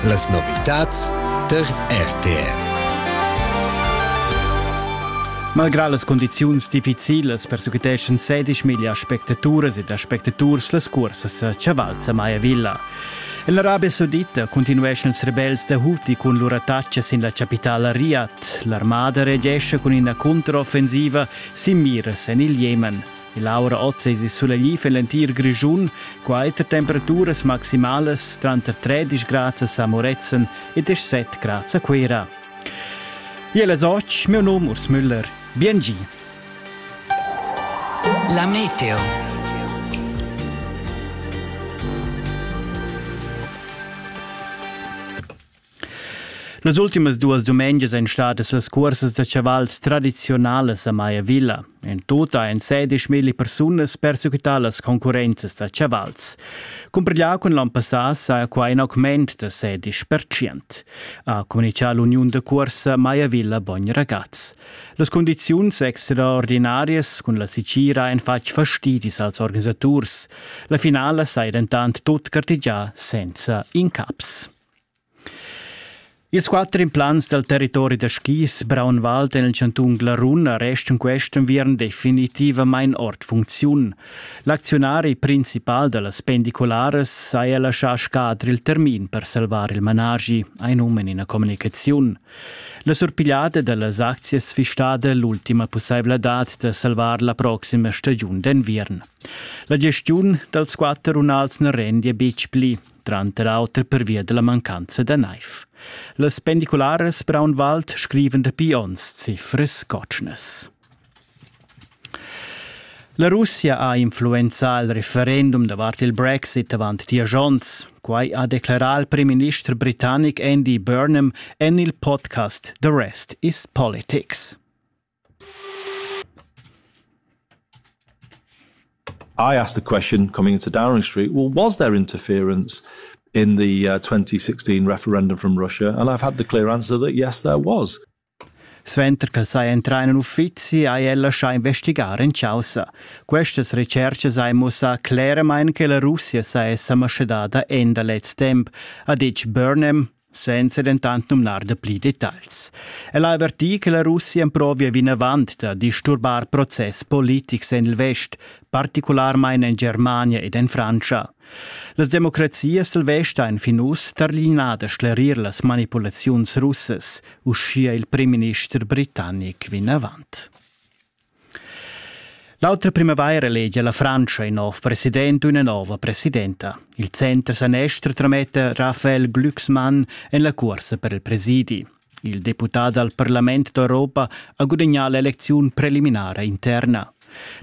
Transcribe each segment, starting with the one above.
Las novitads tar RTR. Malgrà las condiziuns difficilas persequiteschan sedisch miglia aspectaturas ed aspectaturs las cursas a Chavalza Maya Villa. L'Arabia Saudita continueschan ils rebels da Houthi cun lur attacca sin la capitala Riyadh. L'armada reagesce cun ina controffensiva sin miras en il Jemen. L'aura oz es sulegl fin l'entir Grischun, quai tar temperaturas maximalas tranter 13 grads a Moretzen e 17 grads a Cuira. Iel es och, mio nom Urs Müller. Bien gi! La meteo. Las ultimas duas dumengias ein stadas las cuorsas da chavals tradizionalas a Maya Villa. In tota ein sedisch milli persunas persequitar las concurrenzas da chavals. Cumprigliau cun l'ann passà sa quai in augment da sedisch percent, ha communicato l'uniun da cuorsa Maya Villa Bogn Ragaz. Las condiziuns extraordinarias cun la sicira ein fatg fastidis als organisaturs. La finala sai dentant tut gartigià senza incaps. Ils quatter implants dal territori da skis Braunwald en il chantun Glarun restan quest enviern definitivamain ord funcziun. L'acziunari principal da las pendicularas saja laschà scadre il termin per salvar il managi, ha num en ina communicaziun. La surpigliada da las aczias fisstada l'ultima pussaivladad da salvar la proxima stagiun d'enviern. La gestiun dals quatter runals na rendia betg pli. tranter auter pervia della mancanza da naiv. Las pendiculares Braunwald scriven dapi ons cifres cotschnas. La Russia ha influenzà il referendum davart il Brexit avant dies onns. Quai ha declarà il primminister britannic Andy Burnham en il podcast The Rest is Politics. I asked the question coming into Downing Street, well, was there interference in the uh, 2016 referendum from Russia? And I've had the clear answer that yes, there was. Suenter ch'el sai entrar in uffizi ha el lascià investigar in chaussa. Questas recercas hai mussà cleramain che la Russia sa esser maschadada en da lez temp, ha ditg Burnham, senza dentant numnar da pli detagls. El ha avertì che la Russia emprovia vinavant da disturbar process politics en il vest, particularmain en Germania ed en Frantscha. Las democrazias dal vest han fin uss tarlinà da sclerir las manipulaziuns russas, uschia il primminister britannic vinavant. L'autra primavaira elegia la Frantscha in nov president u üna nova presidenta. Il center sanester trametta Raphael Glücksmann en la cuorsa per il presidi. Il deputà dal Parlament d'Europa ha gudagnà l'elecziun preliminara interna.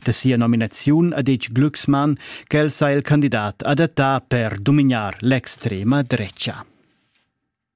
Da sia nominaziun ha detg Glücksmann ch'el sa il candidat adattà per dumignar l'extrema drecha.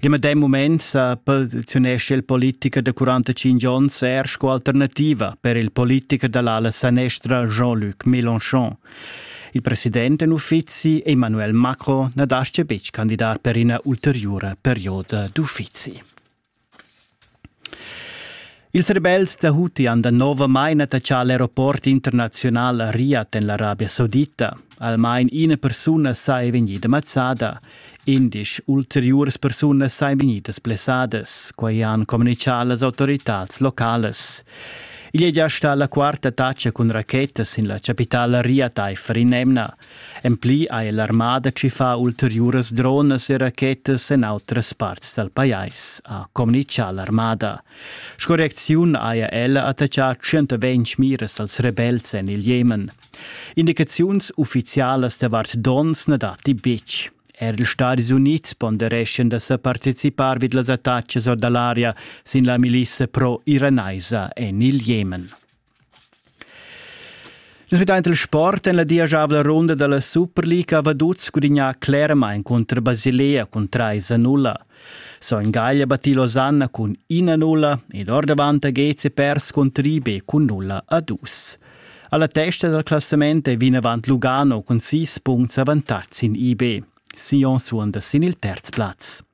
Il medem mument sa posizionesce il politicher de 45 onns er sco alternativa per il politicher dall'ala sanestra Jean-Luc Mélenchon. Il president in uffizi Emmanuel Macron na dasce betg candidar per ina ulteriore perioda d'uffizi. Ils rebels da Huti han danovamain attaccà l'aeroport internaziunal Riyadh en l'Arabia Saudita. Almain ina persuna saja vegnida mazzada. Indisch ulteriuras persunas sajan vegnidas blessadas, quai han communitgà las autoritads localas. Igl è gia stà la quarta taccia cun rachetas sin la chapitala Riyadh aifer in'emna. En pli ha l'armada tschiffà ulteriuras dronas e rachetas en autras parts dal pajais, ha communitgà l'armada. Sco reacziun haja ella attaccà 120 miras als rebels en il Jemen. Indicaziuns uffizialas davart donns na datti betg. Er ils Stadis Unids pondereschan da sa participar vid las attacas or da l'aria sin la milissa pro-iranaisa en il Jemen. Nus vedein il sport en la dieschavla runda dalla Superliga Vaduz gudignà cleramain cunter Basilea cun trais a nulla. Son Gagl ha battì Losanna cun ina nulla ed ordavant ha Gezi pers cun Tribe cun nulla a dus. Alla testa dal classament è vinavant Lugano cun sis punts avantatg sin IB. Sion suonda sin il terz plaz.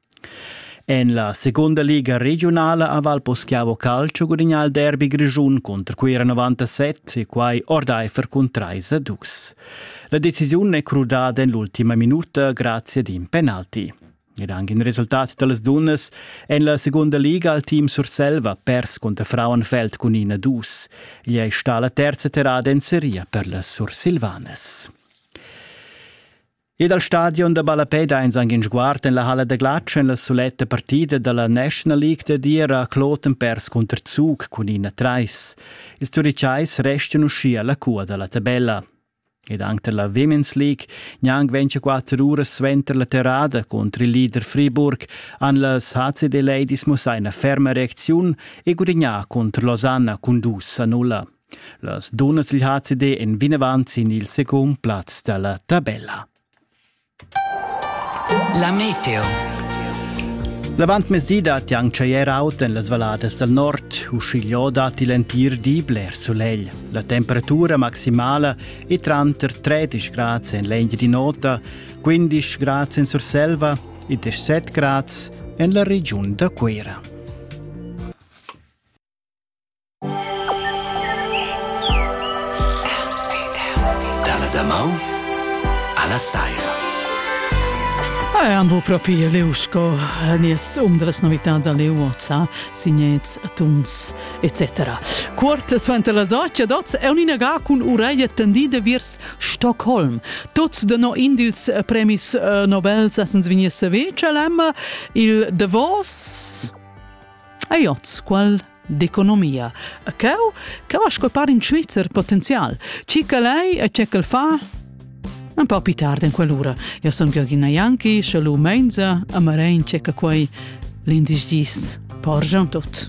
En la segunda liga regiunala a Valposchiavo Calcio gudagnà il derby grischun cunter Cuira 97 e quai ordaifer cun 3 a 2. La decisiun è crudada en l'ultima minuta grazie ad in penalti. Ed anche in resultat da las dunnas en la segunda liga al team Surselva pers contra Frauenfeld cun 1-2. Gli è sta la terza terrada en seria per las Sursilvanas. E dal stadion da ballapè dains anc in sguard en la halla da glatsch en la suletta partida da la National League da dir a Kloten pers cunter Zug cun ina trais. Ils Turitschais restan uschia la cua da la tabella. Ed anche dalla Women's League gnanc 24 uras suenter la terrada contro il leader Friburg han las HCD Ladies mussà una ferma reacziun e gudignà contro Losanna cun dus a nulla. Las dunnas dil HCD en vinavant sin il secund plaz dalla tabella. La meteo. L'avantmezdi dat Yang Tscheier aut en las valadas dal nord, uschigliò datti l'entir di bler solegl. La temperatura maximala è tranter 13 grads en l'Engia di Nota, 15 grads en Surselva e 17 grads en la regiun da Cuira. Dalla damaun alla saira. Anvo propi leu sco nies um dallas novitads a leu oza, signets, tuns, etc. Cuort suenter las 8 dots è un'inaga cun ureglia tendida viers Stockholm. Tots de no in dils premis eh, Nobel sessens vignir sevecel il Davos. Aiots, qual d'economia. A ceu, ceu ha sco par in Svizzer potenzial. Chi quel ei e che quel fa? Un po' più tardi in quell'ora. Io sono Georgina Janki, schalu Menza, a Marein c'è quei l'indice 10. Porgiam tot.